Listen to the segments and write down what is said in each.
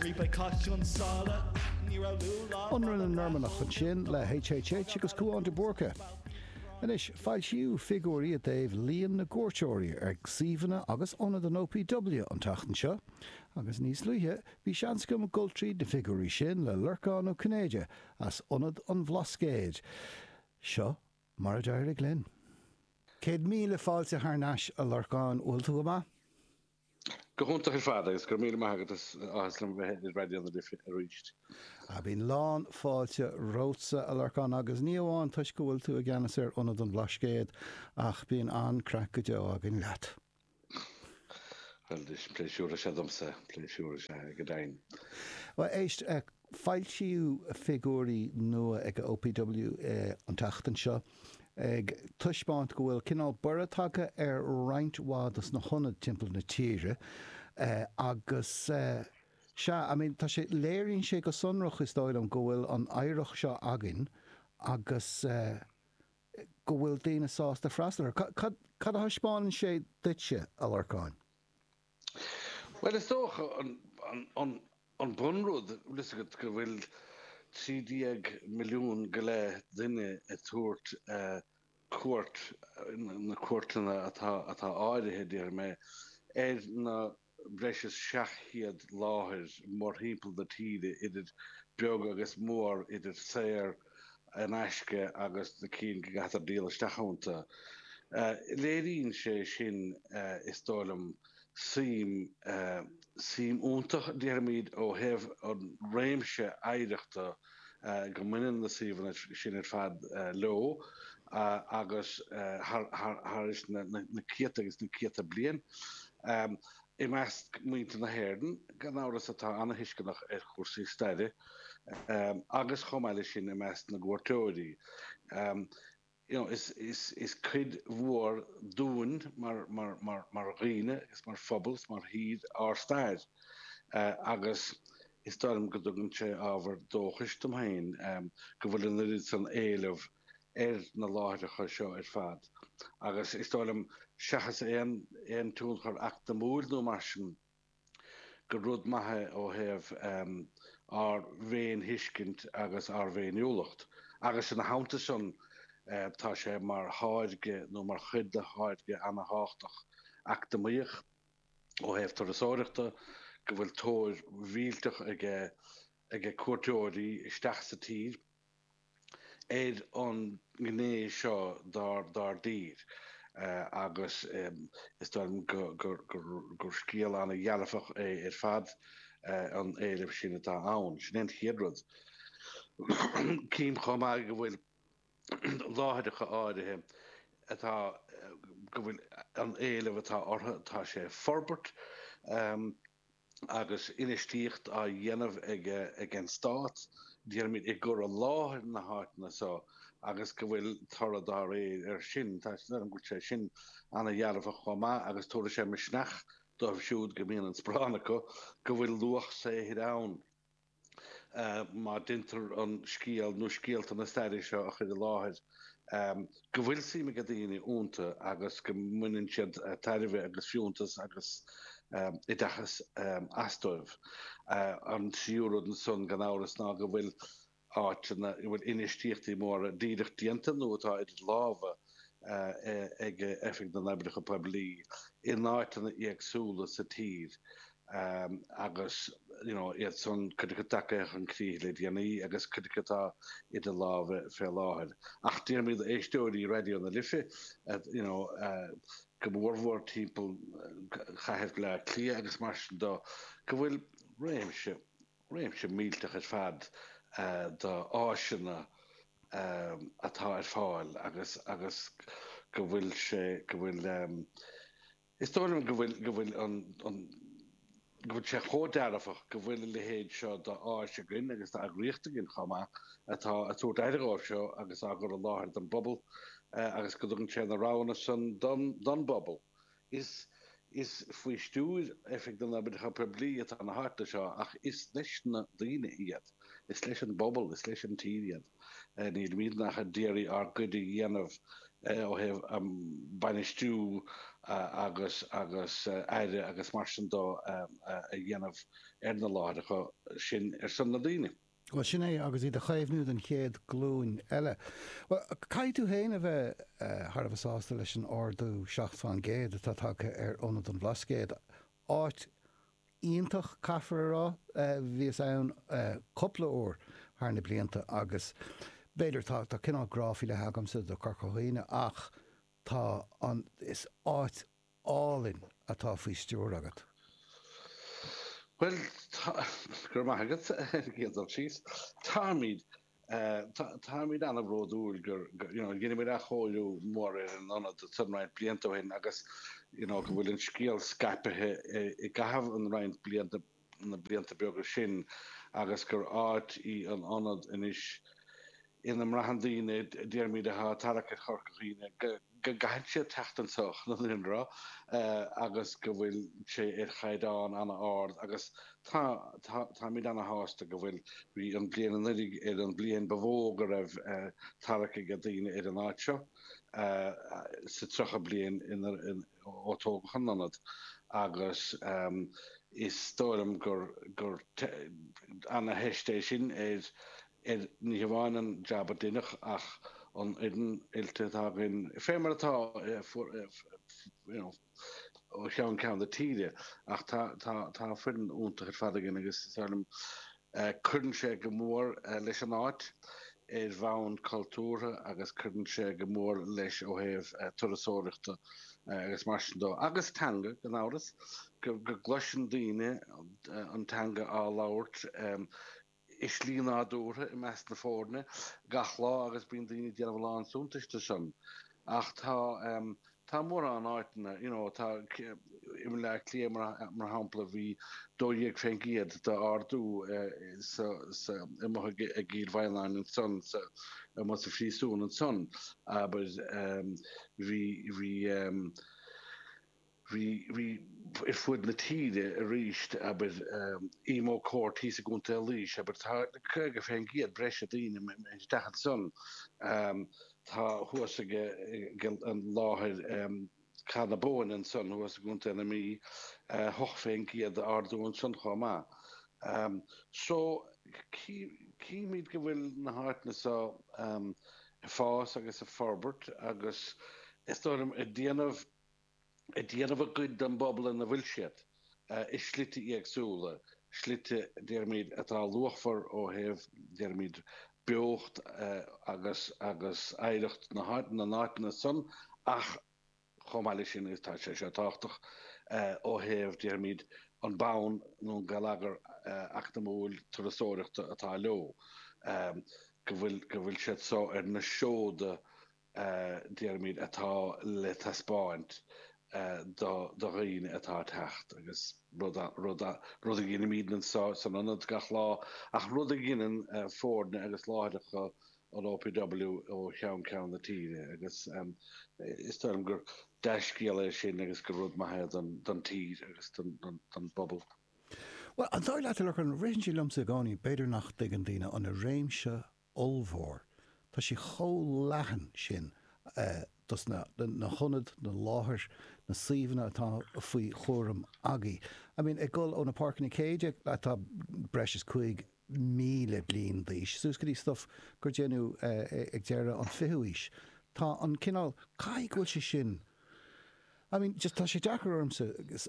Ribe Cath Chionn tSáile, níorbh iontuíl lá fada Ionradh na Normannach ansin le HHH agus Cúán de Búrca. Anois, foilsíodh figiúirí i dtaobh líon na gcuairteoirí ar suíomhanna agus ionad an OPW an tseachtain seo, agus níos luaithe bhí seans agam dul tríd na figiúirí sin le Lorcán Ó Cinnéide as Ionad an Bhlascaoid. Seo mar a d'éirigh linn. Céad míle fáilte thar n-ais, a Lorcáin, bhfuil tú go maith? Go hiontach ar fad agus go raibh míle maith agat, is áthas liom bheith ar Raidió na Life arís. Á, bíonn lán fáilte romhatsa, a Lorcáin, agus ní amháin toisc go bhfuil tú i gceannas ar Ionad an Bhlascaoid, ach bíonn an-craic go deo againn leat. Bhuel, is pléisiúr is ea domsa, pléisiúr is ea go deimhin. Bhuel, éist, Foilsíodh figiúirí nua ag OPW an tseachtain seo ag taispeáint go bhfuil cineál borradh tagtha ar roinnt mhaith dos na hionaid timpeall na tíre agus sea, I mean tá sé, léiríonn sé go sonrach is dóigh liom go bhfuil an oidhreacht seo againn agus go bhfuil daoine sásta freastal air. Cad a thaispeánann sé duitse, a Lorcáin? Bhuel is dócha an bunrud, tá a fhios agat go bhfuil trí déag milliún go leith duine ag tabhairt cuairt, na cuairteanna atá áirithe déarfaidh mé, ar na breis is seacht chéad láthair mórthimpeall na tíre idir beag agus mór, idir saor in aisce agus na cinn go gcaitear díol isteach iontu. Léiríonn sé sin, is dóigh liom, suim, suim iontach déarfaimid ó thaobh an réimse oidhreachta go mbaineann na suíomhanna sin ar fad leo agus thar na céadta agus na céadta bliain. I measc muintir na hÉireann, gan amhras, atá an-tuisceanach ar chúrsaí staire agus chomh maith leis sin i measc na gcuairteoirí, you know, is cuid mhór dínn mar dhaoine agus mar phobal agus mar thír ár stair agus is dóigh liom go dtugann sé ábhar dóchais dom féin go bhfuil an oiread san éileamh ar na láithreacha seo ar fad agus is dóigh liom, seachas aon tionchar eacnamúil nó mar sin, gur rud maith é ó thaobh ár bhféinthuiscint agus ár bhféiniúlacht. Agus ina theannta sin, tá sé mar tháirge nó mar chuid de tháirge ana-thábhachtach eacnamaíoch ó thaobh turasóireachta go bhfuil tóir mhillteach aige cuairteoirí isteach sa tír ar an ngné seo dár dtír agus is dóigh liom gur scéal an-dearfach é ar fad an éileamh sin atá ann. Sin é an chéad rud. Cím chomh maith go bhfuil láithreacha áirithe atá go bhfuil an éileamh atá orthu tá sé ag forbairt. agus infheistíocht á dhéanamh ag an Stát, déarfainn, i gcur i láthair na háiteanna seo agus go bhfuil toradh dá réir air sin. Tá sé sin an-dearfach chomh maith agus tabharfaidh sé misneach dóibh siúd go mbíonn an cúram acu go bhfuil luach saothair ann. má deintear an scéal nó scéalta na staire seo a chur i láthair, go bhfuil suim ag daoine ionta agus go mbaineann siad tairbhe agus fiúntas agus oideachas as dóibh. An tríú rud ansan, gan amhras, ná go bhfuil áiteanna a bhfuil infheistíochtaí móra díreach déanta nó atá idir lámha, ag Oifig na nOibreacha Poiblí in áiteanna éagsúla sa tír agus iad san cuid acu tagtha chun críche le déanaí agus cuid acu atá idir lámha fé láthair. Ach déarfainn le héisteoirí Raidió na Life go mór mhór timpeall Cathair Bhleá Cliath agus mar sin do go bhfuil réimse, réimse millteach ar fad d'áiseanna atá ar fáil agus agus go bhfuil sé go bhfuil is dóigh liom go bhfuil go bhfuil an an go bhfuil sé chomh dearfach go bhfuil a leithéid seo d'áis againn agus d'eagraíocht againn chomh maith atá ag tabhairt aire dhóibh seo agus á gcur i láthair don bpobal agus go dtugann sé na roghanna san don don bpobal. Is is faoi stiúir Oifig na nOibreacha Poiblí atá na háiteanna seo ach is leis na daoine iad. Is leis an bpobal, is leis an tír iad. Nílimid ach ag iarraidh ár gcuid a dhéanamh ó thaobh bainistiú agus agus aire agus mar sin de a dhéanamh ar na láithreacha sin ar son na daoine. Bhuel, sin é, agus iad a chaomhnú don chéad glúin eile. Bhuel, caithfidh tú féin a bheith thar a bheith sásta leis an ardú seacht faoin gcéad atá tagtha ar ionad an Bhlascaoid. Áit iontach, caithfear a rá. Bhíos ann cúpla uair thar na blianta agus b'fhéidir, tá cineál grá faoi leith agamsa do Corca Dhuibhne ach tá an, is áit álainn atá faoi stiúir agat. Bhuel, tá, go raibh maith agat ar an gcéad dul síos. Táimid, táimid an-bhródúil gur, you know, rinne muid athchóiriú mór ar an ionad ansan roinnt blianta ó shin agus, you know, go bhfuil an scéal scaipithe i gcaitheamh an roinnt blianta na blianta beaga sin agus gur áit í an ionad anois ina mbraitheann daoine, déarfaimid atá ag tarrac ar Chorca Dhuibhne, go gcaitheann siad teacht anso chun an anró agus go bhfuil sé ar chaighdeán ana ard agus táimid ana shásta go bhfuil. Bhí an bliain anuiridh ar an bhliain ba mhó go raibh tarrac ag daoine ar an áit seo sa 30 bliain inar ó tógadh an ionad agus is dóigh liom gur ana theist é sin ar ní hamháin an jab a deineadh ach an fhoireann oilte atá againn fé mar atá ó cheann ceann na tíre ach tá foireann iontach ar fad againn agus is dóigh liom Cuireann sé go mór leis an áit ar bhonn cultúrtha agus cuireann sé go mór leis ó thaobh turasóireachta agus mar sin dó. Agus teanga, gan amhras, go gcloiseann daoine an teanga á labhairt i slí nádúrtha i measc na foirne gach lá agus bíonn daoine ag déanamh a lán suntais de sin. Ach tá. Tá mórán áiteanna, you know, tá, i mBleá Cliath mar shampla bhí 12 fén gcéad d'ardú sa, sa, amuigh i gCill Mhaighneann ansan, sa, amuigh sa phríosún ansan, abair, bhí, bhí, bhí, bhí ar fud na tíre aríst, abair, Emo Court thíos i gContae Laois, abair, tá caoga fén gcéad breise daoine isteach ansan. Tá thuas ag láthair Cath na Bóinne ansan thuas i gContae na Mí. Hocht fén gcéad ardú ansan chomh maith. So, chímid go bhfuil na háiteanna so ag fás agus ag forbairt agus is dóigh liom ag déanamh, ag déanamh a gcuid don bpobal ina bhfuil siad, i slite éagsúla, slite, déarfaimid, atá luachmhar ó thaobh, déarfaimid, beocht agus agus oidhreacht na n-áiteanna san ach chomh maith leis sin tá sé seo tábhachtach ó thaobh, déarfaimid, an bonn nó an geilleagar eacnamúil turasóireachta atá leo, go bhfuil siad so ar na seoda déarfaimid, atá le taispeáint do dhaoine atá ag teacht agus rud a dheinimíd anso san ionad gach lá ach rud a dheineann foirne agus láithreacha an OPW ó cheann ceann na tíre agus is dóigh liom gur dea-scéal é sin agus gur rud maith é don tír agus don bpobal. Bhuel, an dóigh leat a Lorcáin, ritheann sé liomsa i gcónaí b'fhéidir nach dtuigeann daoine an réimse ollmhór. Tá sé chomh leathan sin dos na na hionad, na láthair, na suíomhanna atá faoi chúram agaibh. I mean ag dul ó na páirceanna céide atá breis is cúig míle bliain d'aois suas go dtí stuff gur déanadh ag deireadh an fichiú aois. Tá an cineál, caithfidh go bhfuil sé sin, I mean, just tá sé deacair ormsa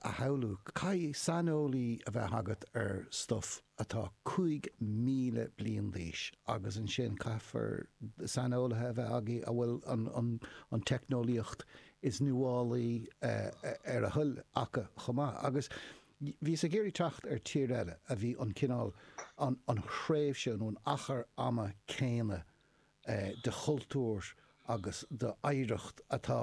a shamhlú, caithfidh saineolaí a bheith agat ar stuff atá 5,000 bliain d'aois agus ansin caithfear saineolaithe a bheith agaibh a bhfuil an teicneolaíocht is nuálaí ar a thoil acu chomh maith. Agus bhíos ag iarraidh teacht ar tír eile a bhí an cineál, an thréimhse nó an achar ama céanna de chultúr agus d'oidhreacht atá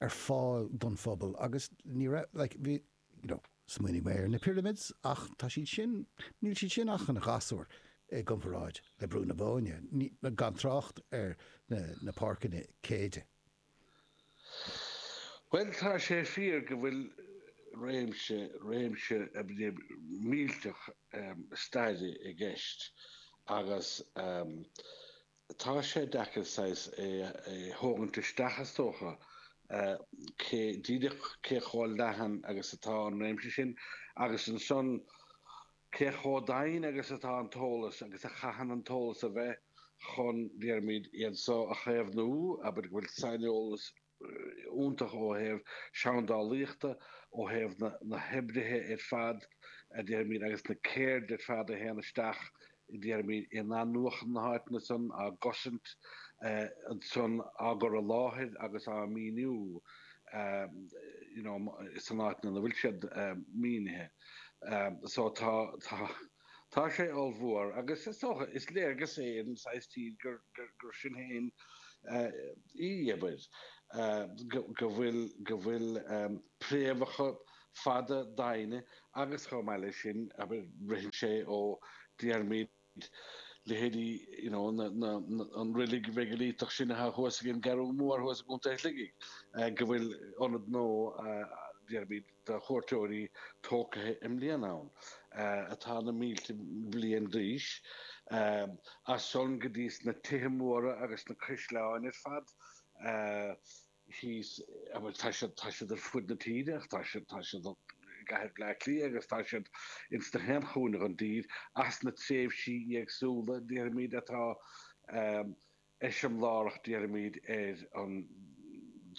ar fáil don phobal agus ní raibh like bhí you know smaoinigh mé ar na pyramids ach tá siad sin níl siad sin ach ina ngasúir i gcomparáid le Brú na Bóinne ní gan trácht ar na na páirceanna céide. Bhuel, tá sé fíor go bhfuil réimse, réimse millteach staire i gceist agus tá sé deacair saghas é a thógaint isteach is dócha, cé díreach, cé chomh leathan agus atá an réimse sin agus ansan Cé chomh doimhin agus atá an t-eolas, agus a chaitheann an t-eolas a bheith, chun, déarfaimid, iad so a chaomhnú, abair go bhfuil saineolas iontach ó thaobh seandálaíochta, ó thaobh na hoibrithe ar fad, déarfaimid, agus na ceird ar fad a théann isteach, déarfaimid, in athnuachan na háiteanna san, á gcosaint ansan, á gcur i láthair agus á míniú, you know, san áit ina bhfuil siad mínithe. so tá tá tá sé ollmhór agus is dócha is léargas é ar an saghas tír gur gur gur sin féin í abair go bhfuil go bhfuil préamhacha fada doimhne agus chomh maith le sin abair ritheann sé ó déarfaimid leithéidí an reilig mheigiliteach sin atá thuas ag an gCeathrú Mhór thuas i gContae Shligigh, go bhfuil ionad nua déarfaimid do chuairteoirí tógtha i mbliana ann, atá na mílte bliain d'aois. As san go dtí na tithe móra agus na caisleáin ar fad. thíos a bhfuil tá siad tá siad ar fud na tíre ach tá siad tá siad i gcathair Bhleá Cliath agus tá siad ins gach aon chúinne den dtír as na tréimhsí éagsúla déarfaimid atá eiseamlárach déarfaimid ar an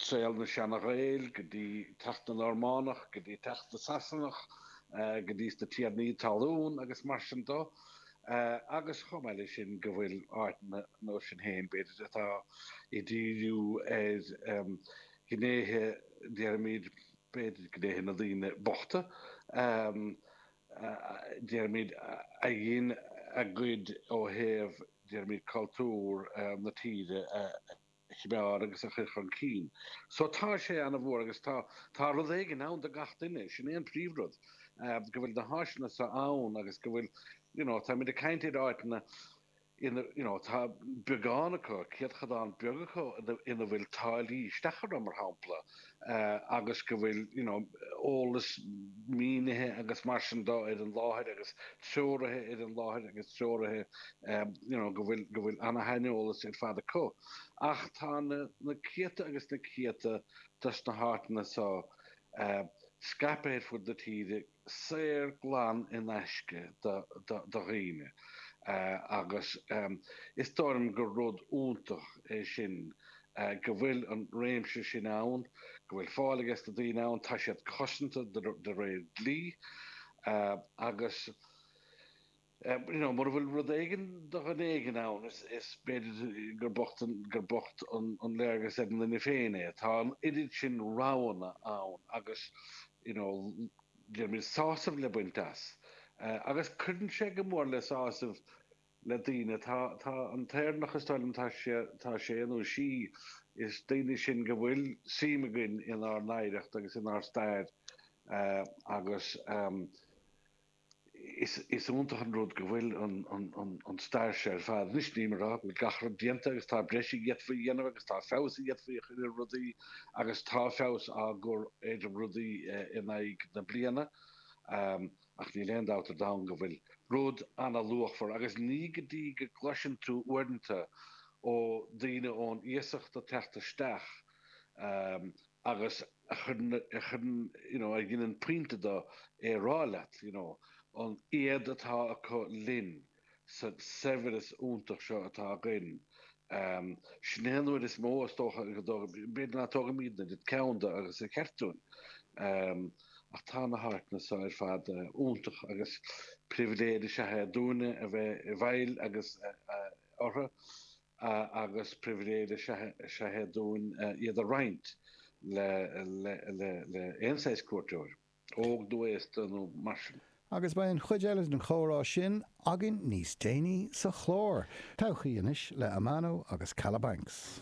saol na seana-Ghael go dtí teacht na Normánach go dtí teacht na Sasanach go dtí na tiarnaí talún agus mar sin de agus chomh maith le sin go bhfuil áiteanna ansin féin b'fhéidir atá ag díriú ar ghnéithe déarfaimid b'fhéidir gnéithe na daoine bochta a déarfaimid a dhein a gcuid ó thaobh déarfaimid cultúr na tíre a chneád agus a chur chun cinn. So tá sé ana-mhór agus tá tá rud éigin ann do gach duine, sin é an príomh rud, go bhfuil na háiseanna seo ann agus go bhfuil you know tá muid ag caint ar áiteanna ina you know tá beagán acu, céatadán beag acu ina bhfuil táillí isteach orthu mar shampla. agus go bhfuil you know eolas mínithe agus mar sin de ar an láthair agus treoraithe ar an láthair agus treoraithe you know go bhfuil go bhfuil ana-shaineolas ar fad acu ach tá na na céadta agus na céadta dos na háiteanna so uh, scaipthe ar fud na tíre saor glan in aisce do dhaoine agus is dóigh liom gur rud iontach é sin go bhfuil an réimse sin ann, go bhfuil fáil aige sna daoine ann, tá siad cosanta de réir dlí agus. you know, mura bhfuil rud éigin do dhuine éigin ann, is b'fhéidir gur bocht, gur bocht an léargas ar an duine féin é. Tá an oiread sin roghanna ann agus, you know, déarfaimid sásamh le baint as. Agus cuireann sé go mór le sásamh le daoine, tá, tá an tÉireannach is dóigh liom, tá sé, tá sé nó sí, is daoine sinn go bhfuil suim againn inár n-oidhreacht agus inár stair agus, you know, Is iontach an rud go bhfuil an stair seo ar fad anois, nílim a rá go bhfuil gach rud déanta agus tá breis a d'fhéadfaí a dhéanamh agus tá feabhas a d'fhéadfaí a chur ar rudaí agus tá feabhas á chur ar rudaí in aghaidh na bliana ach níl aon dabht ar domhan go bhfuil rud ana-luachmhar agus ní go dtí go gcloiseann tú uaireanta ó daoine ón iasacht ag teacht isteach agus a chuireann, a chuireann, you know, a dheineann pointe de é a rá leat, you know, an éad atá acu linn sa saibhreas iontach seo atá againn. Sin é an rud is mó, is dócha, go dtóg, b'fhéidir nach dtógaimid a dhóthain ceann de agus ba cheart dúinn, ach tá na háiteanna seo ar fad iontach agus pribhléid is ea é dúinne a bheith i bhfeighil agus orthu. agus pribhléid is ea é dúinn iad a roinnt le aon saghas cuairteoir, óg nó aosta nó mar sin. Agus beidh an chuid eile den chomhrá sin againn níos déanaí sa chlár. Todhchaí Anois le Amano agus Kalabanx.